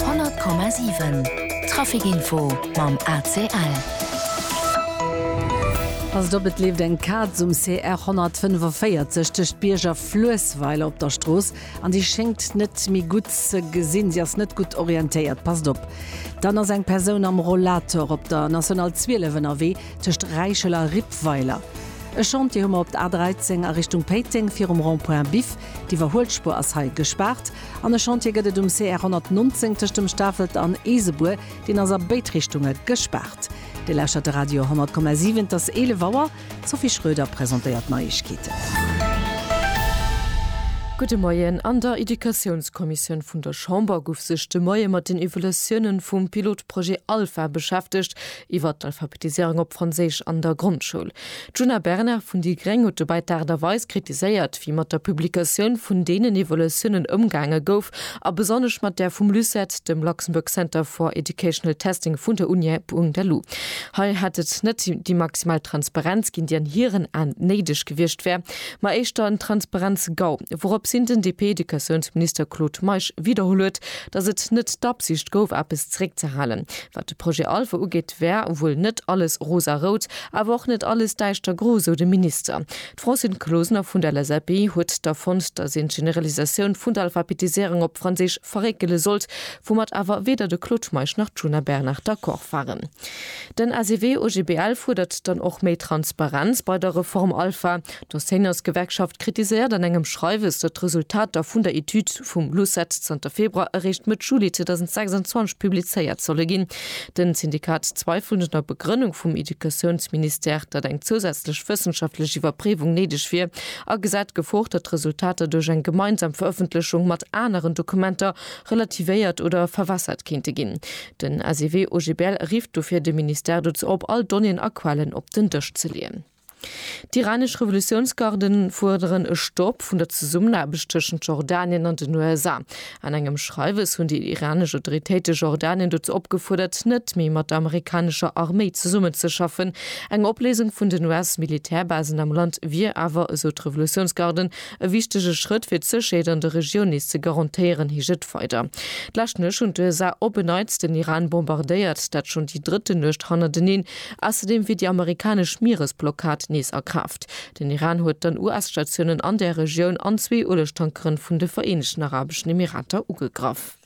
100,7 Traficinfo mam ACL. Passt op, et leeft eng Kaz um CR 145 tëscht Bierg a Fluessweiler op der Strooss an déi schéngt net méi gutt ze gesinn. Si ass net gutt orientéiert. Passt op! Dann ass eng Persoun am Rollator op der National 12 ënnerwee tëscht Räichel a Rippweiler. E Chantier hu mer op der A13 a Richtung Péiteng virum Rond-point Biff. D'Iwwerhuelspur ass hei gespaart an e Chantier gëtt et um CR 119 tëscht dem Stafelt an Eesebuer, deen ass a béid Richtunge gespaart. Dir lauschtert de Radio 100,7, et ass 11 Auer, d'Sophie Schröder presentéiert d'Neiegkeeten. Gudde Moien, An der Educatiounskommissioun vun der Chamber gouf sech de Moie mat den Evolutionen vum Pilotprojet ALPHA beschäftegt, Iwwert d'Alphabetiséierung op Franséisch an der Grondschoul. D'Djuna Bernard vun déi gréng huet dobäi d'Aart a Weis kritiséiert, wéi mat der Publikatioun vun deenen Evaluatiounen ëmgaange gouf a besonnesch mat där vum LUCET, dem Luxembourg Center for Educational Testing vun der Uni Bung der Lu. Hei hätt et net déi maximal Transparenz ginn, déi an hiren Aen néideg gewiescht wär, ma éischter en Transparenz-GAU, wourops hin den DP-Educatiounsminister Claude Meisch widderholl huet, datt et net d'Absicht gouf, eppes zeréckzehalen. Wat de Projet Alphe ugeet, wär wuel net alles rosarout, awer och net alles däischtergro, sou de Minister. D'Francine Closener vun der LSAP huet da fonnt, datt een d'Generalisatioun vun der Alphabetiséierung op Franséisch verréckele sollt, woumat awer weder de Claude Meisch nach d'Djuna Bernard d'accord waren. Den SEW-OGBL fuerdert dann och méi Transparenz bei der Reform Alpha. D'Enseignantsgewerkschaft kritiséiert an engem Schreiwes, datt d'Resultater vun der Etüd vum LUCET zanter Februar eréischt Mëtt Juli 2026 publizéiert solle ginn. Den Syndikat zweifelt un der Begrënnung vum Educatiounsministère, datt eng zousätzlech wëssenschaftlech Iwwerpréiwung néideg wier, a gesäit d'Gefor, datt d'Resultater duerch eng gemeinsam Verëffentlechung mat aneren Dokumenter relativéiert oder verwässert kéinte ginn. Den SEW-OGBL rifft dofir de Ministère dozou op, all Donnéeën a Quellen op den Dësch ze leeën. D'iranesch Revolutiounsgarden fuerderen e Stopp vun der Zesummenaarbecht tëschent Jordanien an den USA. An engem Schreiwes hunn déi iranesch Autoritéite Jordanien dozou opgefuerdert, net méi mat der amerikanescher Arméi zesummenzeschaffen. Eng Opléisung vun den US-Militärbasen am Land wier awer, esou d'Revolutiounsgarden, e wichtege Schrëtt fir d'Sécherheet an der Regioun nees ze garantéieren, heescht et weider. D'lescht Nuecht hunn d'USA op en Neits den Iran bombardéiert, dat schonn déi drëtten Nuecht hannerteneen. Ausserdeem wier déi amerikanesch Mieresblockad nees a Kraaft. Den Iran huet dann US-Statiounen an där Regioun an zwee Uelegtankeren vun de Vereenegten Arabeschen Emirater ugegraff.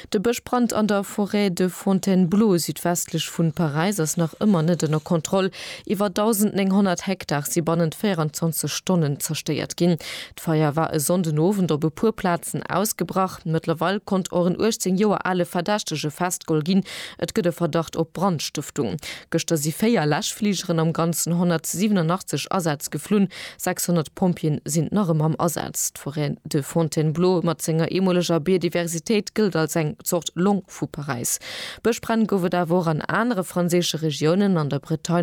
De Bëschbrand an der Forêt de Fontainebleau südwestlech vun Paräis ass nach ëmmer net ënner Kontroll. Iwwer 1.900 Hektar si bannent 24 Stonnen zerstéiert ginn. D'Feier war e Sonnden Owend op e puer Plazen ausgebrach. Mëttlerweil konnt och en 18 Joer ale Verdächtege festgeholl ginn. Et gëtt e Verdacht op Brandstëftung. Gëschter si véier Läschfligeren, am Ganzen 187 Asätz geflunn. 600 Pompjeeën sinn nach ëmmer am Asaz. D'Forêt de Fontainebleau mat senger eemoleger Biodiversitéit gëllt als eng Zort Long vu Paräis. Bëschbränn gouf et awer och an anere franséische Regiounen, an der Bretagne,